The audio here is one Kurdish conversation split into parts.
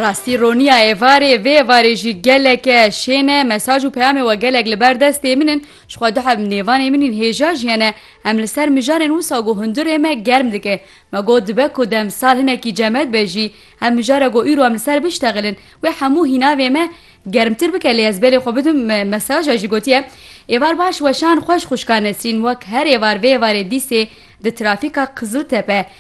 Rastî roniya êvarê vê êvarê jî geleke şên e mesaj û peyamê we gelek li ber destê min in ji xwe duheb nêvanê min in hêja jî hene em li ser mijarên wisa ku hundirê me germ dike me got dibe ku demsal hinekî cemed be jî em mijara ku îro em li ser biştexilin wê hemû hînavê me germtir bike lê ez belê xwe bidim mesaja jî gotiye êvar baş weşan xweş xwişka Nesrîn wek her êvar vê êvarê dîsê di trafîka Qiziltepe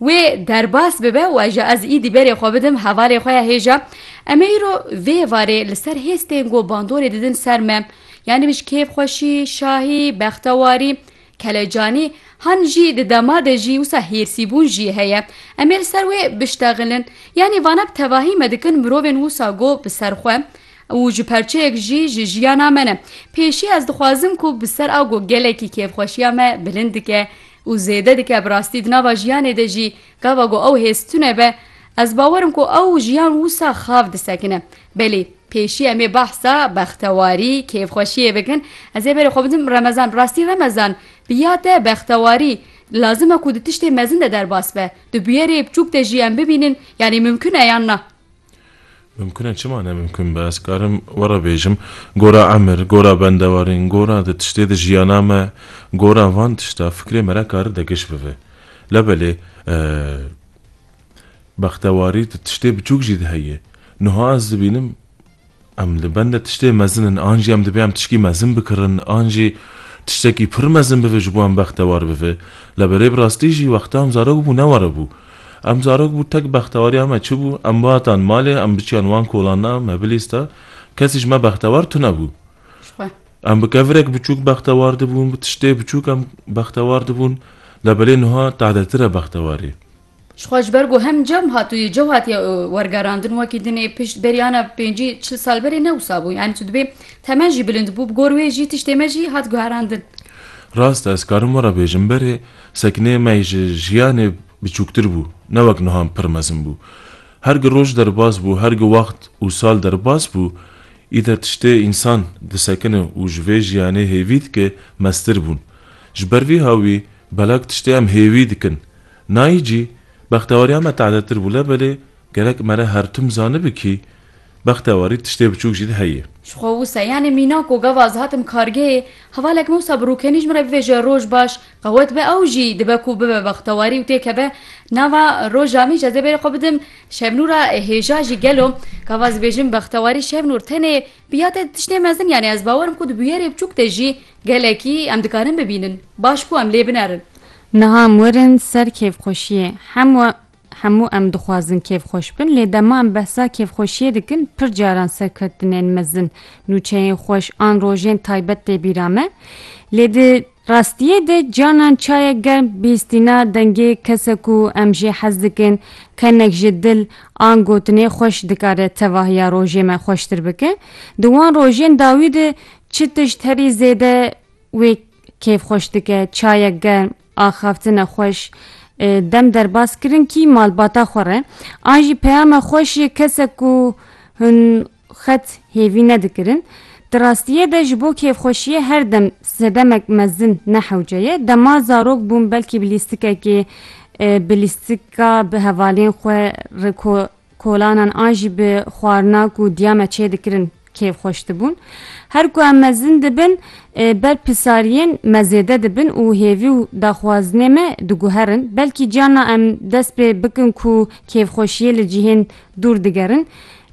Wê derbas bibe û eja ez îdî berê xwe bidim hevalê xwe ya hêja em ê îro vê varê li ser hêz tên ku bandorê didin ser me yanî min ji kêfxweşî, şahî, bextewarî, kelecanî han jî di dema de jî wisa hêrsîbûn jî heye em ê li ser wê biştexilin yanî vana bi tevahî me dikin mirovên wisa ku bi ser xwe û ji perçeyek jî ji jiyana me ne pêşî ez dixwazim ku bi ser a ku gelekî kêfxweşiya me bilind dike û zêde dike bi rastî di nava jiyanê de jî gava ku ew hêz tune be, ez bawer im ku ew jiyan wisa xav disekine. Belê, pêşî em ê behsa bextewarî, kêfxweşiyê bikin. Ez ê berê xwe bidim remezan. Bi rastî remezan bi ya te bextewarî lazim e ku di tiştê mezin de derbas be. Di bûyerê bçûk de jî em bibînin yanî mimkun e yan na? Mimkun e çima ne mimkun be? Ez karim we re bêjim, gora emir, gora bendewarîn, gora di tiştê de jiyana me, gora van tişta fikrê me re kari de giş bive. Labelê bextewarî di tiştê biçûk jî de heye. Nuha ez dibînim. Em li benda tiştê mezin in, an jî em dibê em tişkî mezin bikirin, an jî tiştekî pir mezin bibe ji bo em bextewar bibe. La berê bi rastî jî wexta em zarok bû ne were bû. Em zarok bû tek bextewariya me çi bû, em bihatan malê, em biçiyan wan kolan na, mebilîs da, kesî ji me bextewar tune bû. Em bi kevirek biçûk bextewar dibûn, bi tiştê biçûk em bextewar dibûn, la belê nuha tadetir e bextewarî. Ji xwe ji ber ku hem cem hatûyê cow hatiye wergerandin wekî din ê pişt beryana pêncî çil sal berê ne wisa bû yanî tu dibê temen jî bilind bû bi gor wê jî tiştê me jî hat guherandin. Rast e ez karim were bêjim berê sekneyê me ji jiyanê biçûktir bû ne wek nihan pir mezin bû. Her gi roj derbas bû her gi wext û sal derbas bû îde tiştê însan disekine û ji vê jiyanê hêvî dike meztir bûn. Ji ber vî hawî belak tiştê em hêvî dikin Nayî cî, Bextewariya me tadetir bû lebelê gerek me re her tim zanibi kî bextewarî tiştê biçûk jî di heyê. Ji xwe wisa yanê mîna ku gava ez hatim kargehê, hevalek me wisa bi rûkenî ji min re bivêje roj baş, qewet be ew jî dibe ku bibe bextewarî û tê keve nava roja min jî ez ê bêrê xwe bidim Şevnûra hêja jî gelo gava ez bêjim bextewarî Şevnûr tenê bi ya te di tiştê mezin yanê ez bawer im ku di bûyerê biçûk de jî gelekî em dikarin bibînin baş bû em lê binerin Niha em werin ser kêfxweşiyê. Hem we hemû em dixwazin kêfxweş bin lê dema em behsa kêfxweşiyê dikin pir caran serkeftinên mezin, nûçeyên xweş an rojên taybet tê bîra me. Lê di rastiyê de canan çayek germ bihîstîna dengê kesek ku em jê hez dikin, kenek ji dil an gotinê xweş dikare tevahiya rojê me xweştir bike. Di wan rojên dawî de çi tişt herî zêde Wê kêf xweş dike, çayek germ, axaftine xweş, dem derbas kirin kî malbata xwe re. An jî peyama xweş yê kesek ku hûn xet hêvî nedikirin. Di rastiyê de ji bo kêfxweşiyê her dem sedemek mezin ne hewce ye. Dema zarok bûm belkî bi lîstikekê bi lîstika bi hevalên xwe re Kolanan an jî bi xwarina ku diya me çê dikirin kêfxweş dibûn. Her ku em mezin dibin ber pisariyên me zêde dibin û hêvî û daxwazinê me diguherin. Belkî carna em dest pê bikin ku kêfxweşiyê li cihên dûr digerin.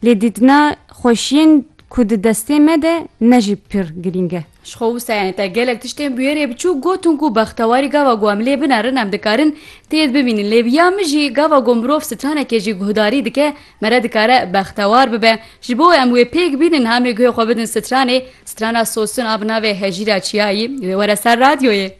Lê dîtina xweşiyên ku di destê me de ne jî pir girîng e. Ji xwe wusayên te gelek tiştên bûyerê biçûk gotin ku bextewarî gava ku em lê binerin em dikarin têd bimînin lê bi ya min jî gava ku mirov sitanekê jî guhdarî dike mere dikare bextewar bibe ji bo em wê pêk bînin hamê guhê xwe bidin sitranê sitrana sosin a bi navê Hejîra Çiyayî wê were ser radyoyê.